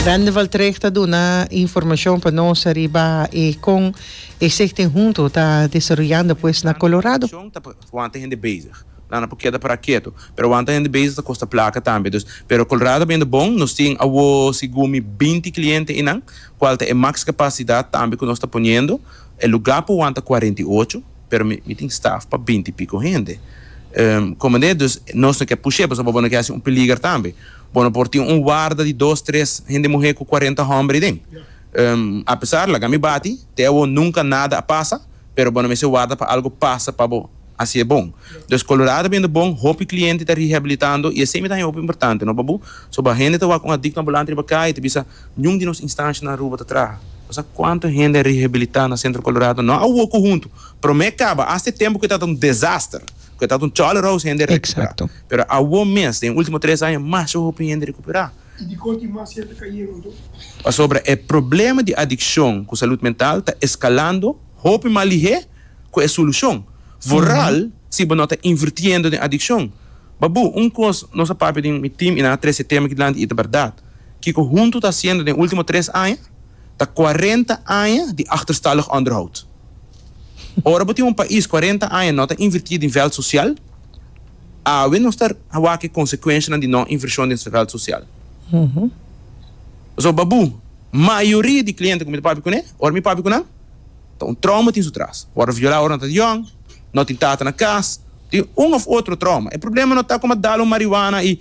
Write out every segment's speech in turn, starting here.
Rende Valtrecht ta duna informacion pa nos riba e con e Stichting Hunto ta desaroyando pues na Colorado. Wan ta hende bezig. Nan a por keda para keto. Pero wan ta hende bezig ta kosta placa tambe. Dus, pero Colorado ta biendo bon. Nos tin awo segun mi binti cliente einan, cual ta e max capacidad tambe cu nos ta poniendo. E lugar pa wan ta cuarenta i ocho. pero mi mi tin staf pa binti y pico hende comende dus nos no ke push'e pasobra bo no ke haci un peliger tambe bo no por tin un warda di dos tres hende muhe cu cuarenta homber ayi den apesar laga mi bati te awor nunca nada a pasa pero bo no mester warda pa algo pasa pa bo haci e bon dus Colorado biendo bon hopi cliente ta rehabilitando y esey mi ta haña hopi importante no pabu soba hende ta wak un adicto ambulant riba cay y ta bisa. Niun di nos instansha na Aruba ta traha. Bo sa kuantu hende a rehabilita na Centro Colorado no? Awor ku huntu. Prome kaba asta e tempu ku e tabata un desaster, ku e tabata un chole rouse hende a rekupera. Pero awor mes, den e ultimo tres aña, masha hopi hende a rekupera. I dikon tin mas hende ta kayendo anto? Pasobra e problema di adikshon ku salud mental ta eskalando hopi mas lihé ku e solushon. Vooral si bo no ta invirtiendo den adikshon. Babu, un kos nos a papia den mi tim i nan a trese e tema aki dilanti i ta bèrdat. Kiko Huntu ta hasiendo den ultimo tres aña ta cuarenta aña di achterstalig onderhoud. Ora bo tin un pais cuarenta aña no ta inverti den veld social, awe nos ta wak e consecuencianan di no inversion den veld social. Pasobra Babu, mayoria di cliente cu mi ta papia cu ne, ora mi papia cu nan, ta un trauma tin su tras. Worde viola ora nan ta young, no tin tata na cas, tin un of otro trauma. E problema no ta cu mi a dal un marijuana y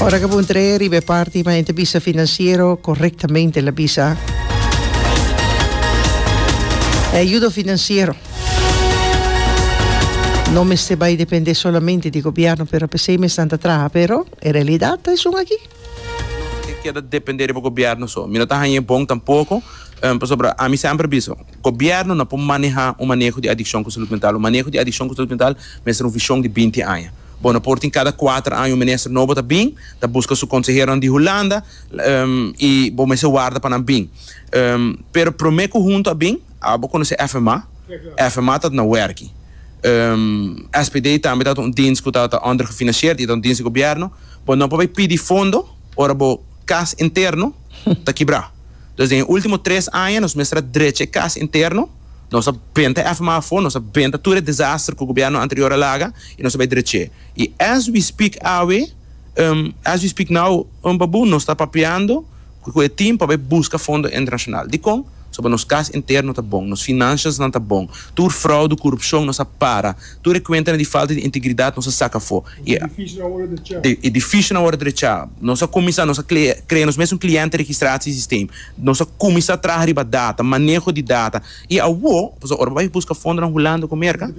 Ora ku bon trei riba e parti ma entrebista finansiero korektamente la bisa. E ayudo finansiero no mester bai depende solamente di gobièrnu pero p'esei mesnan ta traha pero e realidat ta esun aki. No tin keda depende riba gobièrnu so. Mi no ta haña e bon tampoko pasobra ami semper bisa. Gobièrnu no por manehá un maneho di adikshon ku salud mental. Un maneho di adikshon ku salud mental mester un vishon di binti aña. Bo no por tin kada kuater aña un minister nobo ta bin ta buska su konseheronan di Hulanda i bo mester warda pa nan bin. Pero promé ku huntu a bin, a bo konosé FMA? FMA ta na wèrki. SPD tambe ta un dienst ku ta òndergefinansieerd i ta un dienst di gobièrnu. Bo no por bai pidi fondo. Ora bo kas interno ta kibrá. Dus den e último tres aña nos mester a drecha e kas interno, nos a benta èf mas afó, nos a benta tur e desaster ku gobièrnu anterior a laga i nos a bai drech'é. I as we speak awe, as we speak now, Pabu, nos ta papiando ku e tim pa bai buska fondo internashonal. Dikon? Pasobra nos kas interno ta bon, nos finanshasnan ta bon, tur fraudu, kurupshon nos a para, tur e kuentanan di falta di integridat nos a saka afó. E difícil awor ta drechá. Nos a kuminsá, nos a krea nos mes un kliente registratie sistem. Nos a kuminsá traha riba data, maneho di data. I awor, pasobra ora bo bai buska fondonan Hulanda ku Merka,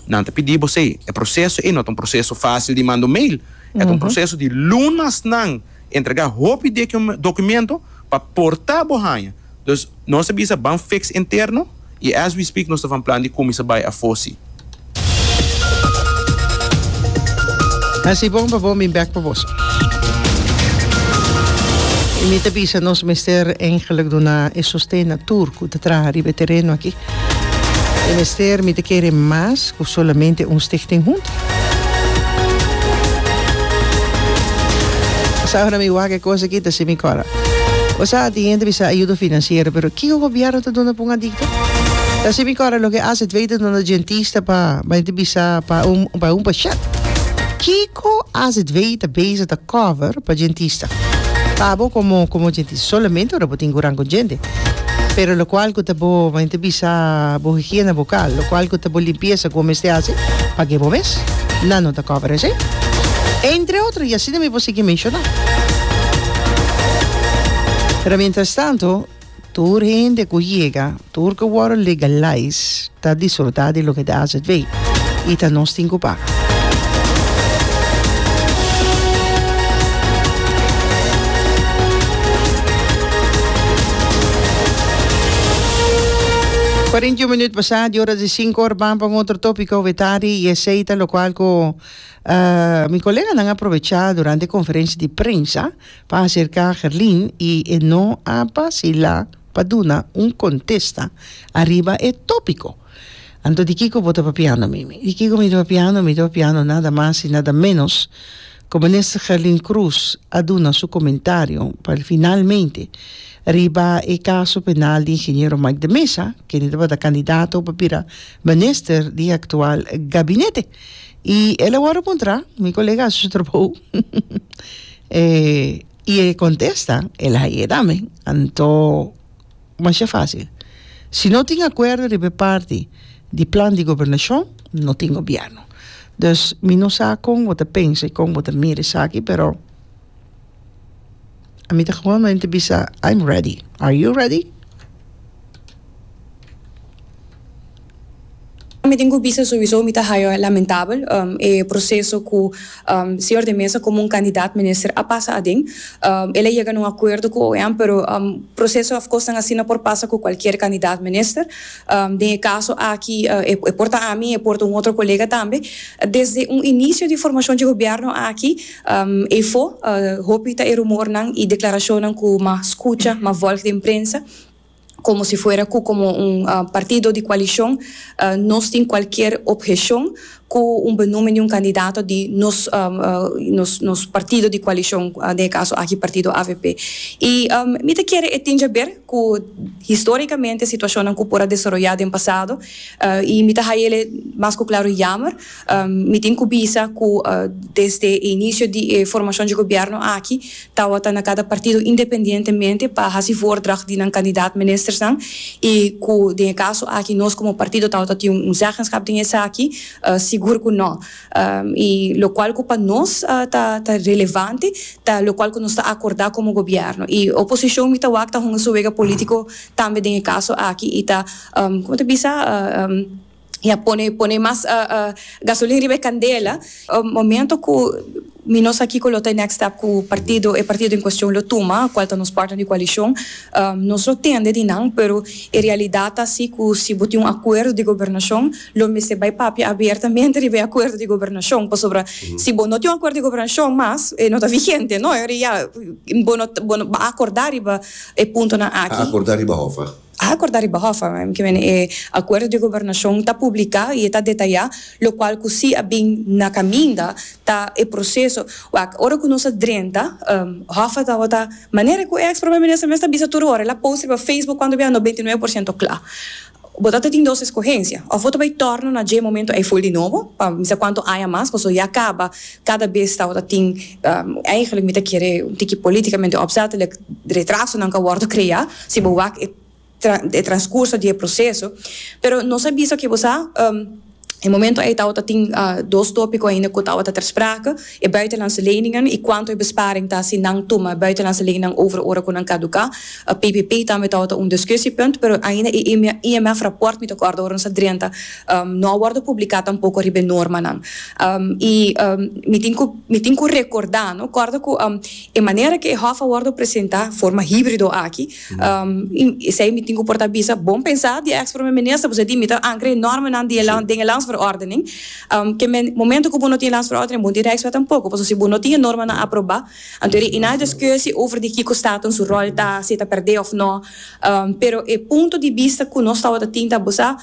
nan ta pidi bo esei. E proseso ei no ta un proseso fásil di manda un mail. E ta un proseso di lunas nan entregá hopi dokumento pa por ta bo haña. Dus nos a bisa ban fix interno y as we speak nos ta van plan di cuminsa bay afo si. Hasi bon pa bo, mi bek pa boso. Y mi ta bisa nos mester engelak duna e sosten na tur cu ta traha riba e tereno aki. E mester mi ta kere mas ku solamente un Stichting huntu. Bo sa ora mi wak e kos aki ta si mi kòrda. Bo sa tin hende bisa ayudo finansiero pero kiko gobièrnu ta duna pa un adikto? Ta si mi kòrda loke AZW ta duna dentista pa bai ta bisa pa un pa un pashèt. Ki. Ko AZVI ta beza ta cover pa djentista. Pa bo komo komo djentista solamente ora bo tin kuran kon djente. Pero lokual ku ta bo men ta bisa bo higiena bokal, lokual ku ta bo limpiesa ku bo mester hasi pa ke bo mes, nan no ta cover esei. Entre otro i asina mi por sigui menshoná. Pero mientras tanto. Tur hende ku yega, tur ku wòrdu legalais ta disfrutá di loke di AZV i ta nos tin ku paga. Kuarenta i un minüt pasá di ora di sinku ora ban pa un otro tópiko awe tardi i esei ta lokual ku mi koleganan a aprovechá durante e konferensia di prensa pa acerca Gerlin y e no a bacila pa duna un contesta ariba e topico. Anto di kico bo ta papiando, Mimi? Di kico mi ta papiando? Mi ta papiando nada mas y nada menos cu Minister Gerlin Croes a duna su comentario pa el finalmente riba e caso penal di Ingeniero Mike de Meza, kende tabata candidato pa bira Minister di e actual Gabinete. Y el awor a muntra, mi colega a haci su trabou. Eh, y e contesta, el a yé tambe. Anto, masha fácil. Si no tin acuerdo riba e parti di plan di gobernacion, no tin gobierno. Dus, mi no sa con bo ta pensa y con bo ta mira esaki, pero a mi ta gewonmente bisa, I'm ready. Are you ready? Mi tin ku bisa sowiso mi ta haya lamentabel e proseso ku Señor de Meza komo un kandidat minister a pasa aden. El a yega na un akuerdo ku OM pero proseso of kos nan asina por pasa ku kualkier kandidat minister. Den e kaso aki e por ta ami e por ta un otro kolega tambe. Desde un inisio di formashon dje gobièrnu aki efo hopi ta e rumornan i deklarashonnan ku mas skucha, mas vòlg den prensa. komo si fuera ku komo un partido di koalishon nos tin kualkier obheshon ku un benúmen di un kandidato di nos nos partido di koalishon, den e kaso aki partido avp. I mi ta kere e tin jaber ku historikamente situashonnan ku por a desaroyá den pasado i mi ta haya el mas ku klaru yamer Mi tin ku bisa ku desde e inicio di e formacion dje gobierno aki tawata na cada partido independientemente pa haci voordracht di nan candidaat ministersnan y ku den e caso aki nos como partido tawata tin un zeggenschap den esaki sigur ku no. Y locual ku pa nos ta relevante ta locual ku nos ta acorda como gobierno y oposicion mi ta wak ta hunga su wega politico tambe den e caso aki y ta como ta bisa y a pone pone mas gasolin riba e candela momento cu mi no sa kico lo ta e next step cu partido e partido en cuestion lo tuma cual ta nos partner di coalicion nos lo tende di nan pero e realidad ta asi cu si bo tin un acuerdo di gobernacion lo mester bay papia abertamente riba e acuerdo di gobernacion pasobra si bo no tin un acuerdo di gobernacion mas e no ta vigente no bo no bo no a acorda riba e puntonan aki. A acorda riba hofa kimen e acuerdo di gobernacion ta publica y e ta detaya locual cu si a bin na caminda ta e proceso wak ora cu nos a drenta hofa tabata manera cu e ex Prome Minister mes ta bisa tur ora el a post riba Facebook cuando biaha no beinti nuebe por ciento cla bo ta ta tin dos escogencia of bo ta bay torno na dje momento ey full di nobo pa mi sa cuanto aña mas pasobra ya caba cada bes tabata tin eigenlijk mi ta kere un tiki politicamente opzettelijk retrasonan cu a wordo crea. si bo wak e e transcurso di e proceso, pero nos a bisa cu bo sa e momento ei tawata tin dos topico ainda cu tawata ter sprake, e buitenlandse leningen y cuanto e besparing ta si nan tuma buitenlandse leningen over ora cu nan caduca, PPP tambe tawata un discussiepunt, pero ainda e IMF rapport mi ta corda ora nos a drenta no a wordo publica tampoco riba e normanan y mi tin cu mi tin cu recorda no corda cu. E manera ke e hòf a wòrdu presentá, forma híbrido aki, esei mi tin ku por ta bisa, bon pensá di e eks Prome Minister, pasobra e di mi ta ankra e nòrmenan di e land den e Landsverordening, ke men momento ku bo no tin e Landsverordening bo no tin Rijkswet tampoko, pasobra si bo no tin e normanan aprobá, anto e na e diskushi over di kiko Staten su ròl ta, si e ta pèrdè òf nò, pero e punto di bista ku nos tabata tin ta bosá,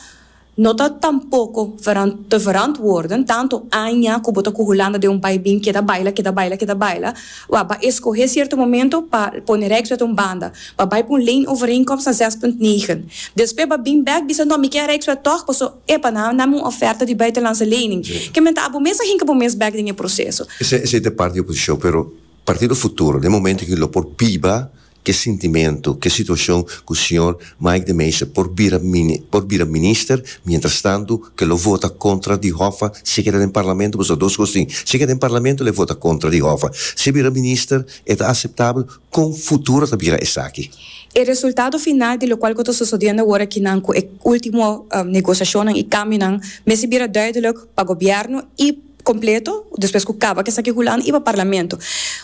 No ta tampoko verant te verantwoorden tanto aña ku bo ta ku Hulanda den un bai bin keda baila, keda baila, keda baila. Wak, ba eskohé sierto momento pa pone Rijkswet un banda. Ba bai pa un leenovereenkomst na zes punt negen. Despues ba bin bèk bisa, No, mi ke Rijkswet tòg, paso, epa, nan a nam un ofèrta di buitenlandse lening. Ke men ta abo mes a hinka bo mes bèk den e proseso. Esei ta e parti di oposishon, pero Partido Futuro den momento aki lo por biba ke sintimentu, ke situashon ku señor Mike de Meza por bira por bira minister, mientras tantu ke lo vota kontra di Hoffa si e keda den parlamento pasobra dos kos tin, si e keda den parlamento lo e vota kontra di Hoffa, si e bira minister e ta aseptabel, kon futuro ta bira esaki? E resultado final di lokual ku ta sosodiendo awor akinan ku e ultimo negosiashonnan i kambionan mester bira duidelijk pa gobièrnu i completo despues cu caba cu esaki hulan y pa parlamento.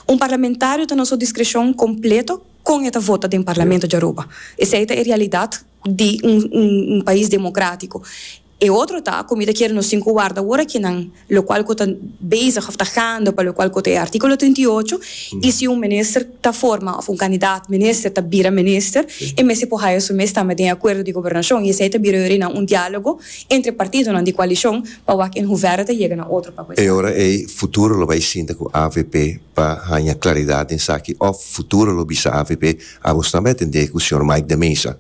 Un parlamentario ta na su discrecion completo con e ta vota den parlamento dja Aruba. Esey ta e realidad di un pais democratico. E otro ta cu mi ta kere nos tin cu warda awor aki nan lo cual cu ta bezig of ta gaande pa lo cual cu ta e articulo trinta i ocho y si un minister ta forma of un candidaat minister ta bira minister e mester por haya su mes tambe den e acuerdo di gobernacion y esey ta bira yorinan un dialogo entre partidonan di coalicion Pa wak en huvero ta yega na otro pa cu esaki. E ora ey futuro lo bay sinta cu avp pa haña claridad den esaki of futuro lo bisa avp abos tambe a tende cu señor Mike de Meza.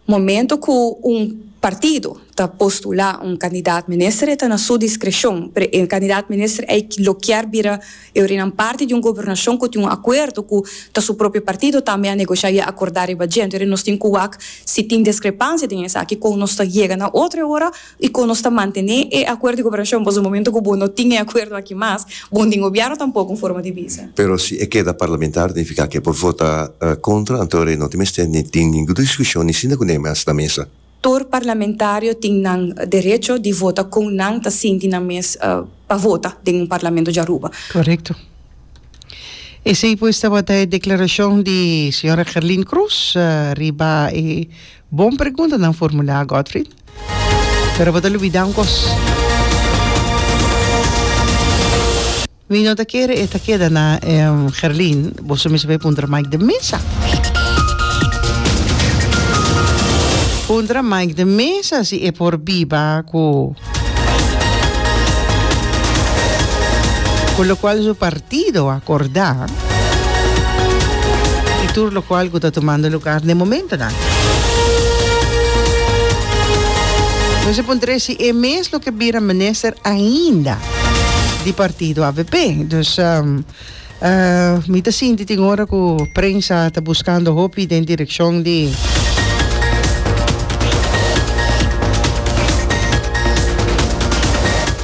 Momento cu un partido ta postula un candidat minister e ta na su discrecion, pero e candidat minister ey lo kier bira eurinan parti di un gobernacion cu tin un acuerdo cu ta su propio partido tambe a negocia y a acorda riba djento. Eri nos tin cu wak si tin discrepancia den esaki con nos ta yega na otro e ora. I kon nos ta mantené e akuerdo di koperashon? Pasobra momento ku bo no tin e akuerdo aki mas, bo no tin gobièrnu tampoko un forma di bisa. Pero si e keda parlamentario nifiká ku e por vota kontra, anto rei no tin mester ni tin ningu diskushon ni sinta ku neme hasi na mesa. Tur parlamentario tin nan derecho di vota kon nan ta sinti nan mes pa vota den un parlamento di Aruba. Korekto. Esei pues tabata e deklarashon di señora Gerlin Croes riba e bon pregunta nan formulá, Godfrid. Pero bo ta lubida un kos. Mi no ta kere e ta keda na Gerlin, bo su misti por e puntra Mike de Mesa. Puntra Mike de Mesa si e por biba ku ku lokual su partido a korda. y tur locual cu ta tumando lugar n'e momentonan. Nos a puntra si e mes lo ke bira minister ainda di partido avp. Dus mi ta sinti tin ora cu prensa ta buscando hopi den direccion di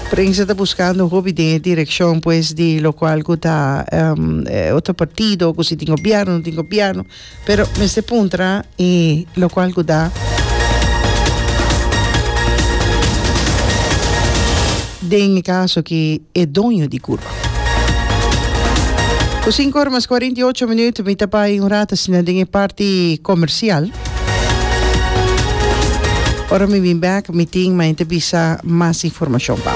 Prensa ta buskando hopi den e direkshon pues di lokual ku ta e otro partido ku si tin gobièrnu no tin gobièrnu pero mester puntra e lokual ku ta den e kaso ki e doño di kurba. Ku sinku ora mas kuarenta i ocho minut mi ta bai un rata asina den e parti komersial. Ora mi bin bek mi tin ma enta bisa mas informacion pa.